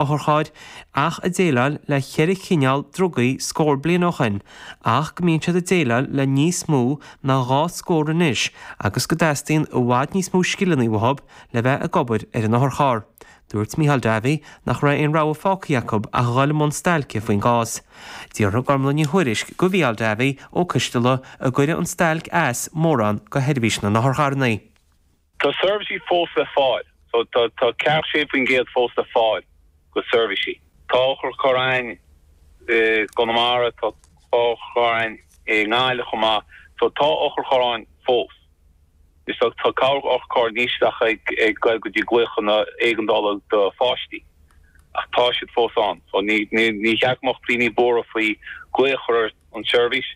otharchairr ach ag déileáil le ceithre chineál drugaí scór bliain ó shin ach go mbíonn siad ag déileáil le níos mó ná dhá scór anois agus go dteastaíonn i bhfad níos mó scileanna uathu le bheith ag obair ar an otharcharr. Dúirt Micheál Davey nach raibh aon rogha fágtha acu ach a dhul i mbun stailce faoin gcás. D'fhiafraigh Gormfhlaith Ní Thuairisg go Mhicheál Davey Ó Coistealla an gcuirfeadh an stailc as mórán go sheirbhís na n-otharcharranna. Tá seirbhísí fós le fáil. So tá ceathracha sé faoin gcéad fós le fáil go seirbhísí. Tá otharcharranna i gConamara. Tá otharcharranna i nGaillimh chomh maith. So tá otharcharranna fós. Is dóigh tá otharcharr anois díreach ag goil go dtí glaochanna éigeandála do pháistí. Ach tá siad fós ann. So ní cheart go mbeadh daoine buartha faoi glaoch a chur ar an tseirbhís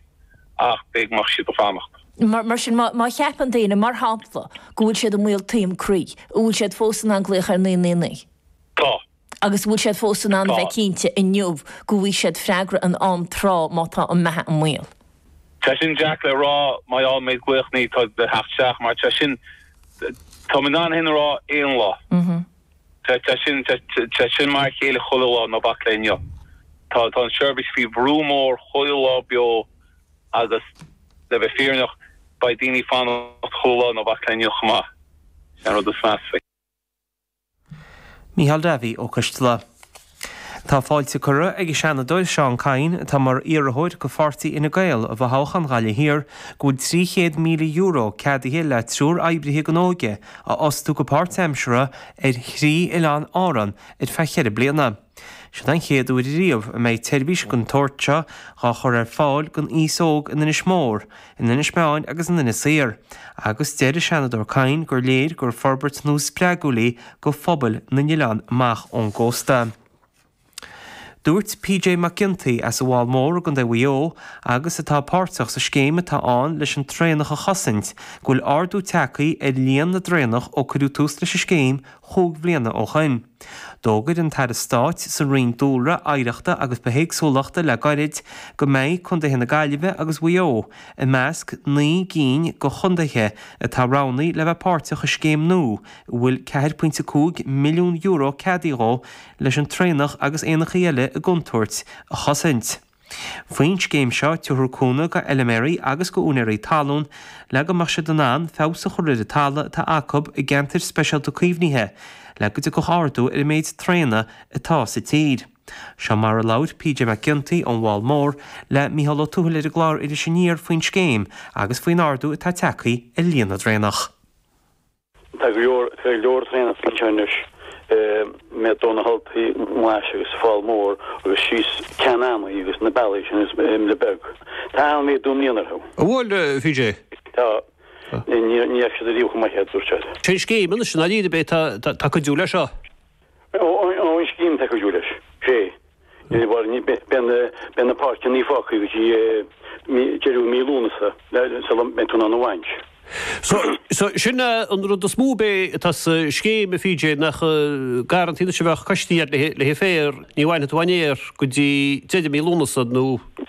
ach b'fhéidir go mbeidh siad ag fanacht. Mar sin, má cheapann daoine, mar shampla, go bhfuil siad i mbaol taom croí, an bhfuil siad fós in ann glaoch ar 999? Tá. Agus an bhfuil siad fós in ann a bheith cinnte inniu go bhfaighidh siad freagra in am tráth má tá a mbeatha i mbaol? Tá sin deacair le rá. Mar gheall méid glaoch 999 tá ag teacht isteach mar tá sin, tá mé in ann é sin a rá aon lá. Tá sin mar a chéile chuile lá, ná bac le inniu. Tá an tseirbhís faoi bhrú mór chuile lá beo agus le bheith fírinneach, beidh daoine ag fanacht chuile lá, ná bac le inniu chomh maith. Sin an rud is measa faoi. Mícheál Davey Ó Coistealla. Tá fáilte curtha ag an Seanadóir Seán Kyne, atá mar iarrthóir go Pháirtí Fhine Gael i bhfothoghchán Ghaillimh Thiar, go bhfuil €300,000 ceadaithe le triúr oibrithe don óige a fhostú go páirtaimseartha ar thrí oileán Árann ar feadh cheithre bliana. Seo é an chéad uair riamh a mbeidh seirbhís den tsórt seo á chur ar fáil don aos óg in Inis Mór, in Inis Meáin agus in Inis Oírr, agus deir an Seanadóir Kyne gur léir gur forbairt nua spreagúil í go phobail na n-oileán amach ón gcósta. Dúirt PJ Mac Ginty as an bhFál Mór i gContae Mhaigh Eo, agus atá páirteach sa scéim atá ann leis an traonach a chosaint, go bhfuil ardú tagthaí ar líon na dtraonach ó cuireadh tús leis an scéim chúig bhliana ó shoin. D'fhógair an tAire Stáit sa Roinn Dúlra, Oidhreachta agus Bithéagsúlachta le gairid go mbeidh Contaetha na Gaillimhe agus Mhaigh Eo i measc naoi gcinn de chontaetha atá roghnaithe le bheith páirteach i scéim nua a bhfuil €4.5 milliún ceadaithe dhi leis an traonach agus éanachaí eile i gcontúirt a chosaint. Faoin scéim seo, tabharfar cúnamh go fheilméaraí agus go úinéirí talún le go mbeadh siad in ann feabhas a chur ar an talamh atá acu i gceantair speisialta caomhnaithe le go dtiocfadh ardú ar an méid traona atá sa tír. Seo mar a labhair PJ Mac Ginty, ón bhFál Mór, le Mícheál Ó Tuathail ar an gclár Iris Aniar faoin scéim agus faoin ardú atá tagthaí ar líon na dtraonach. Tá go leor traonach sa tír anois i ndiaidh dó na hAltaí Ghlais agus Fál Mór agus síos Ceann an Eanaigh agus na bealaí sin agus Muine Bheag, tá an-mhéadú i mbliana orthu. An bhfuil, a PJ? Tá. Ní fhaca siad ariamh chomh maith é, a dúirt sé. Cén scéim anois i ndáiríre atá ag cuidiú leis seo? An scéim atá ag cuidiú leis sé beidh na páirceanna fágtha go dtí deireadh mí Lúnasa sula mbeidh tú in ann a bhaint. So sin an rud is mó atá sa scéim a PJ nach garrantaí anois a bheadh coistí air le haghaidh féar ní bhainfidh tú an fhéar go dtí deireadh mí Lúnasa nó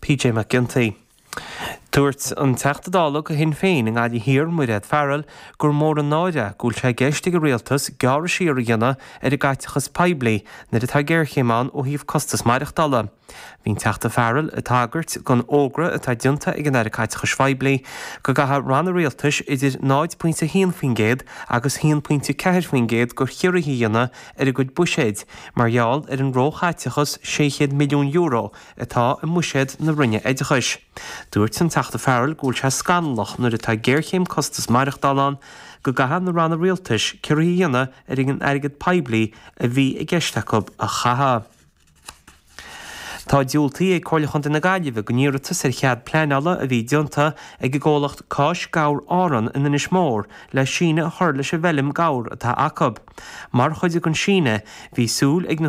PJ Mac Ginty. Dúirt an Teachta Dála do Shinn Féin i nGaillimh Thiar, Mairéad Farrell, gur mór an náire go bhfuil sé i gceist ag an Rialtas gearradh siar a dhéanamh ar an gcaiteachas poiblí nuair atá géarchéim ann ó thaobh costas maireachtála. Bhí an Teachta Farrell ag tagairt don fhógra atá déanta ag an Aire Caiteachais Phoiblí go gcaithfidh Ranna Rialtais idir 0.1% agus 1.4% de chiorruithe a dhéanamh ar a gcuid buiséid mar gheall ar an róchaiteachas €600 milliún atá i mbuiséad na Roinne Oideachais. Dúirt an Teachta Farrell go bhfuil sé scannalach nuair atá géarchéim costas maireachtála ann go gcaithfidh na Ranna Rialtais ciorruithe a dhéanamh ar an airgead poiblí a bhí i gceist acu a chaitheamh. Tá diúltaithe ag Comhairle Chontae na Gaillimhe don iarratas ar chead pleanála a bhí déanta ag an gcomhlacht Cáis Gabhair Árann in Inis Mór le síneadh a chur leis an bhfeilm gabhar atá acu. Mar chuid den síneadh, bhí súil ag na.